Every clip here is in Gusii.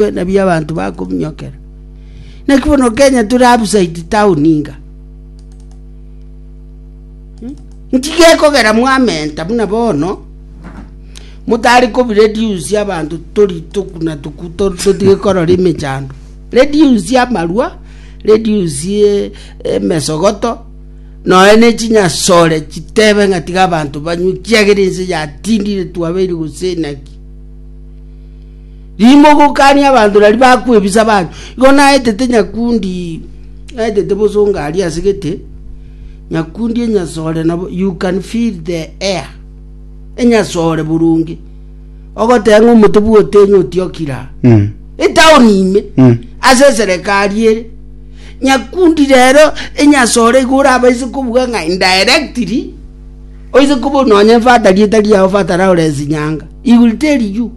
Buna bi abanto bakominyokera. Naki bono Kenya tore outside town inga. Hmm? Nchiga ekogera mwamenta buna bono motari kobireduce abantu tori tokuna tuku to- totige korora emechando reduce amarua reduce eh, emesogoto noe ne chinyasore chitebe ng'a tiga abanto banywe kiagera ense yatindire twabeire gose naki Rimogokania abanto naria bakwebisa abanto. Igo naetete nyakundi, naetete bosonga aria ase gete, nyakundi enyasore nabo, you can feel the air. Enyasore boronge. Ogoteba ng'a omote bwa otenyi otiokira. Mm. Etaoni ime. Mm. Ase serikali ere. Nyakundi rero enyasore igo orabaise kobuga ng'a indirectly oise kobo nonya fata rieta riao fata Lawrence Nyanga. He will tell you.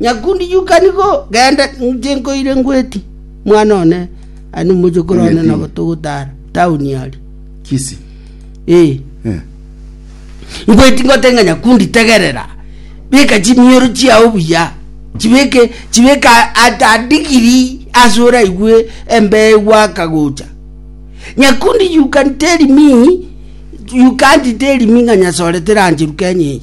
“Nyakundi, yuka nigo genda, inche nkoire ngweti, mwana one aye nomochokoro one nabo togotara taoni aria. Kisi? Ee, ngweti ngote ng'a nyakundi, tegerera, beka chimioro chiao buya, chibeke chibeke a- at a degree ase oraigwe embee gwaka gocha. Nyakundi, you can tell me, you can't tell me ng'a nyasore terancheru Kenya eye.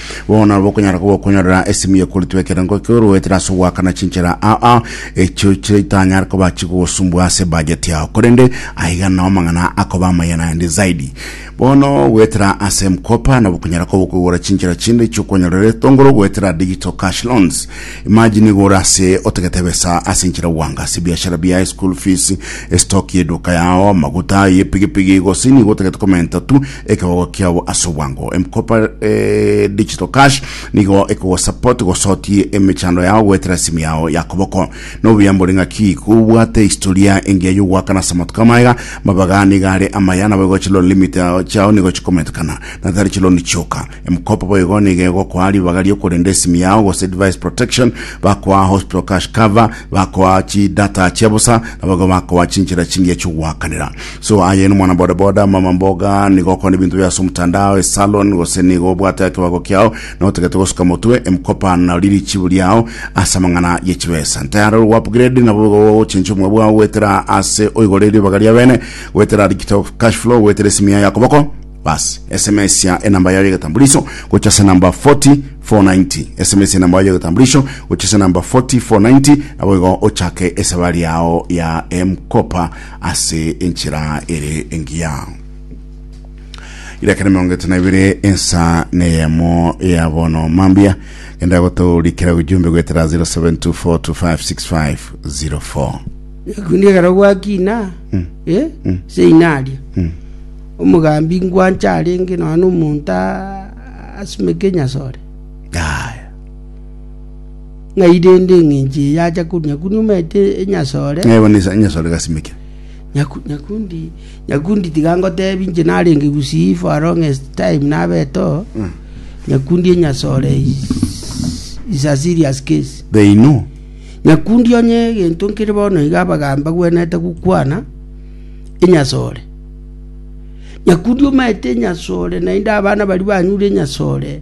Bono nabo okonyara koba okonyorera esimi yekoritwa ekerengo ekio oroetera ase ogoakana chinchera aa echio chitanyare koba chigogosumbua ase ebudget yao korende aiga nao amang'ana akoba amaya naende zaidi bono goetera ase mkopa nabo okonyara koba okogora chinchera chinde chiokonyorera etongoro goetera digital cash loans imagine igo ore ase otagete ebesa ase enchera gwanga ase ebiashara biaye school fees estock y'eduka yao amaguta y'epigipigi gose nigo otagete komenta tu ekegogo kiabo ase obwango. M-Kopa eh, Digital Cash nigo ekogosupport gosotie emechando yao goetera simu yao ya koboko. Nobuya mbori ng'aki kobwate historia engiya yogoakana ase amatuko amaega, mabaga niga are amaya nabo igo chiloni limit yao- chiao nigo chikomentekana na tari chiloni chioka. M-Kopa boigo nigo egokoa ribaga riokorenda esimu yao gose device protection, bakoa hospital cash cover, bakoa chidata chia bosa, nabo igo bakoa chinchera chingiya chiogoakanera. So aye nomwana bodaboda mama mboga nigo okora ebinto bia ase omotandao esalon gose nigo obwate ekebago kiao na otagete gosuka motwe emkopa na riri chibu riao ase amang'ana ye chibesa ntayare ore upgrade nabo bigo ochenche omwe bwao goetera ase oigore ribaga ria bene goetera digital cash flow goetera esimi yaye akoboko bas sms ya enamba yayo egetambuliso gocha ase namba 40 490 sms enamba yayo egetambuliso gocha ase namba 40 490 nabo igo ochake esabari yao ya emkopa ase enchera ere engiya. Irakera miongo etano ebere ensa neyemo ya bono mambia enda gotorikera gujumbe gwetera 0724256504 kundi ekero gwakina eh, ase inaria omogambi ngwancha arenge nonya na omonto a- asumeke nyasore Aya. Ng'ai rende eng'encho eye acha korwa Nyakundi omanyete enyasore? Ng'ai bono ase enyasore gasimekire? Nyaku- Nyakundi, Nyakundi tiga ngotebi inche narenge gusii for a longest time nabete oo. Mm. Nyakundi enyasore is, is a serious case. They know. Nyakundi onye egento nkere bono iga abagaambi bagwenerete gokwana enyasore. Nyakundi omanyete enyasore naende abana baria banyure enyasore.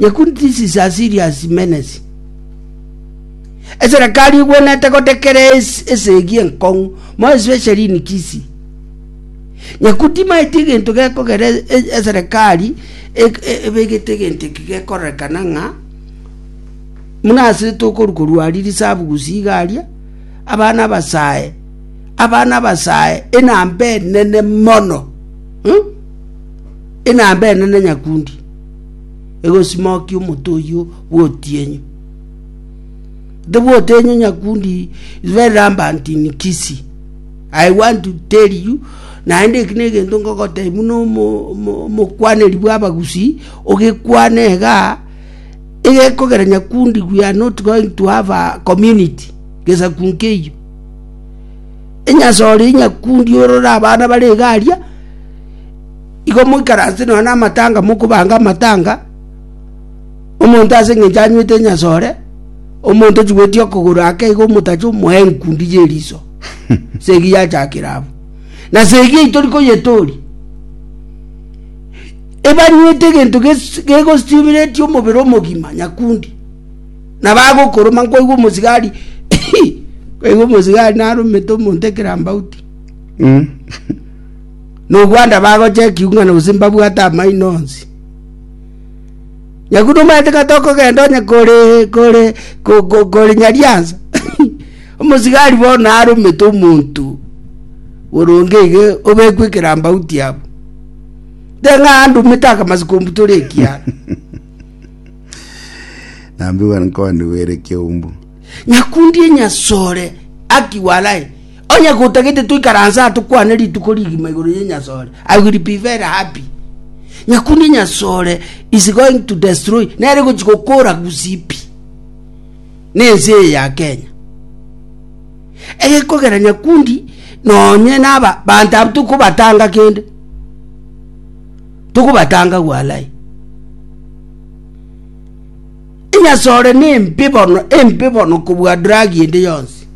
Yekun thesis are serious menace. Eserekari egwenete gotekera esegi enkong'u more especially in Kisii. Yekun timaeti egento gekogera e- e- eserekari ek- e- ebegete egento eki gekorekana ng'a muna ase tokoru korwa aria risabu gusiga aria abana abasae abana abasae enamba enene mono hmm? enamba enene nyakundi egosimokia omote oyio bw'otienyu. The bw'otienyu nyakundi is very rampant in Kisii. I want to tell you naende eki negento ngogotebia buna omokwaneri bw'abagusi ogekwana iga egekogera nyakundi we are not going to have a community gesaku nkeiyo enyasore nyakundi orore abana bare iga aria. Igo moikaranse nonya namatanga mokobaanga amatanga, omonto ase engencho anywete enyasore, omonto ochubeti okogoro ake igo omotacha omoe enkundi ye riso. Segi yachakire abo. Na segi eyi tori koyetooria. Ebanywete egento gegositimreti omobere omogima nyakundi. Na bagokoroma nkoigwa omosigari nkoigwa omosigari naromete omonto ekerambauti. nogwanda bagocha ekiung'ana gose mbabwate amaino onsi. Nyaku nomaete kata okogenda onye kore kore kore Nyariansa, omosigari bono naromete omonto oronge iga obekwe ekerambauti abo. Teng'a andumete akamasi kombutora ekiara. Nambiwa nkoni were keumbu. Nyakundi enyasore aki walai Onye gotagete toikaranse aa tokwane rituko rigima igoro ye Nyasore, I will be very happy. Nyakunde Nyasore is going to destroy, nere gochi gokora gusipi nense eye ya Kenya. Egekogera nyakundi nonye naba bantu abo tokobatanga kende. Tokobatanga gwalai. Nyasore ne mpe bono, empe bono kobua dragi ende yonsi.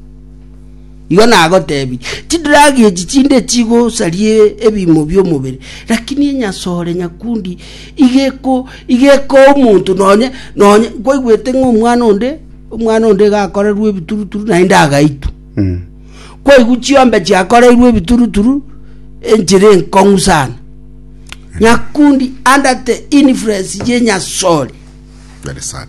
Igo nagoteebie, Chidragi echi chinde chigosaria ebiimo bi'omobere, lakini enyasore nyakundi igeko igekoa omonto nonye nonye kwaigwete ng'a omwana onde omwana onde iga akorerwe ebituruturu naende agaitwa. Mm. Kwaigwa chiombe chiakoreirwe ebituruturu enchera enkong'u sana. Nyakundi under the influence ye nyasore. Very sad.